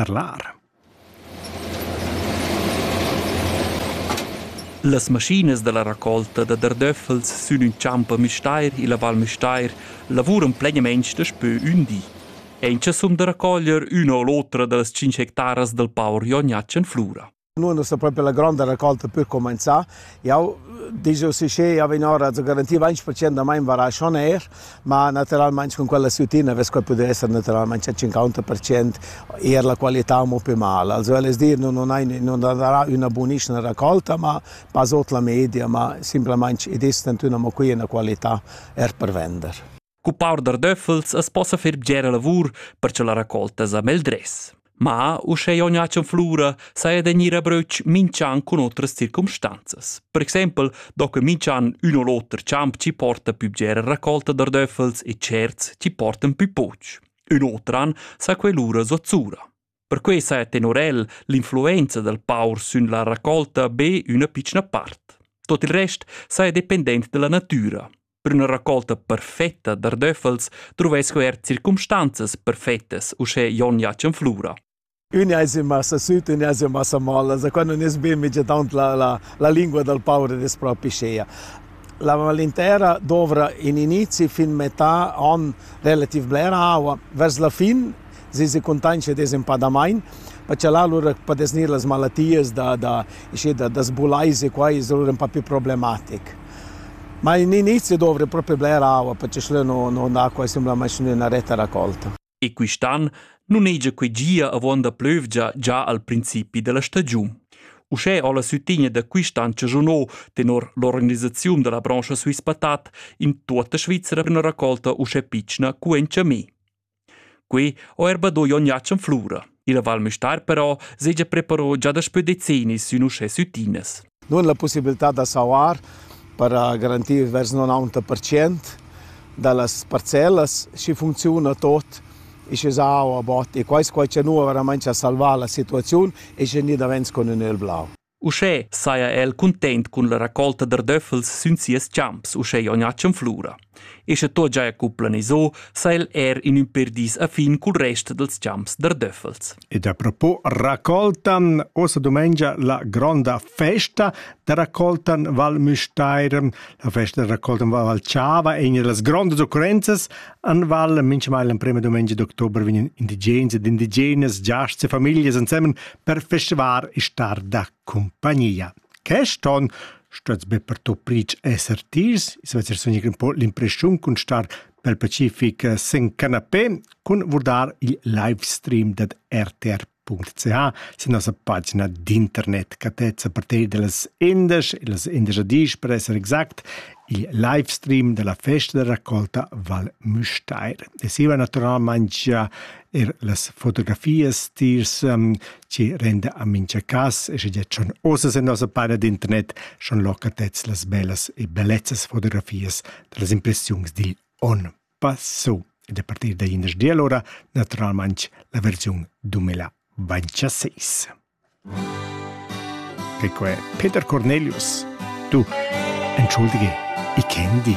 Tarlar. Las maschinas dalla raccolta da dardöffels sün ün champ a Müstair illa Val Müstair lavuran plainamaing daspö ün di. Aint cha sun da raccoglier üna o l'otra da las tschinch hectaras dal power gnatsch in flura. Nu es sta propi la gronda racolta per cumanzà. Jau digiu si che jau vegn ora a garantir 20% da mein varà schon er, ma naturalmain cun quella sutina vess quai pudair esser naturalmain a 50% eir la qualità mo pe mal. Also el es dir, nun hai nun darà üna bunischna racolta, ma pas ot la media, ma simplamaing id es tantüna mo quia üna qualità er per vender. Cuppar da döffels as possa fer bgera lavur per cha la raccolta sa meldress. Ma, uschè jon Jacen Flura, saja da gnir a bröch minch'an cun otras circumstanzas. Per exaimpel do que minch'an ün o l'oter champ chi porta pü bgera raccolta da döffels e tscherts chi portan pü poch. Ün otran sa que lura zozzura. Perquei sa è tenor el l'influenza dal paur sün la raccolta be üna pitschna part. Tot il rest sa è dependent dalla natüra. Per üna raccolta perfetta d'ardöffels truvais co er circumstanzas perfettas uschè Jon Jacen Flura. Ün ais in massa süt, ün ais in massa mol, also qua nun es be immediatament la, la, la lingua dal paur ed es propi schea. La malintera dovra in inizi fin metà an relativ blera aua. Vers la fin si se contanscha desenpadamain, perché là lura podes gnir las malatias da da ischi da da sbulais e quai es lura ün po più problematic. Ma in inizi dovri propi bler aua perché schlö no no andà quai simplamaing üna retta racolta. E quist'an nun hegia que gia avon da plövgia già al principi della stagiun. Uschè ho la sütigna da quist'an chagiunò tenor l'organisaziun da la branscha Swiss Patat in tuotta Svizzera üna raccolta uschè pitschna cu en Chamé. Quei ho er badoi ogni acc en flura. Il Val Müstair però segia preparò già daspö decennis sün uschè süttinas. Nun la pussibilità da sauar per garantir vers 90% da las parcellas schi funcziuna tot e sche sa aua bot e quai quai cha nu veramente ha salvà la situaziun e sche ni davents con ün el blau. Uschè saja el cuntent cun la racolta d'ardöffels sün sias champs uschè Jognatschen Flura. E sche tot giaja cu planiso, sa el er in ün per dis a fin cul rest dels champs d'ardöffels. Ed a propos raccoltan, ossa domengia la gronda festa da raccoltan Val Müstair. La festa da raccoltan Val Chava è una das grandes occurrenzas Anval minchamail l'emprema dumengia d'october vegnan indigens ed indigenas giasts e famiglias ensemen per festivar e star da compagnia. Quest on stuets be per to pric esser tirs, es vezer sogni un po l'impression cun star pel Pacific sin canapé cun vurdar il livestream dad RTR .ch sin nossa pagina d'internet catezza parter dellas indesch e las indesch dis per esser exact il live stream della festa da raccolta Val Müstair. E siva naturalmente gia er las fotografias tiers um, ci renda a mincha cas e sche già schon osas in nossa pagina d'internet schon locatez las bellas e bellezzas fotografias dellas impressiuns dil on. passo ed a partir da indesch ora naturalmain la versiun 2026. E qua è Peter Cornelius. Du, entschuldige, ich kenne dich.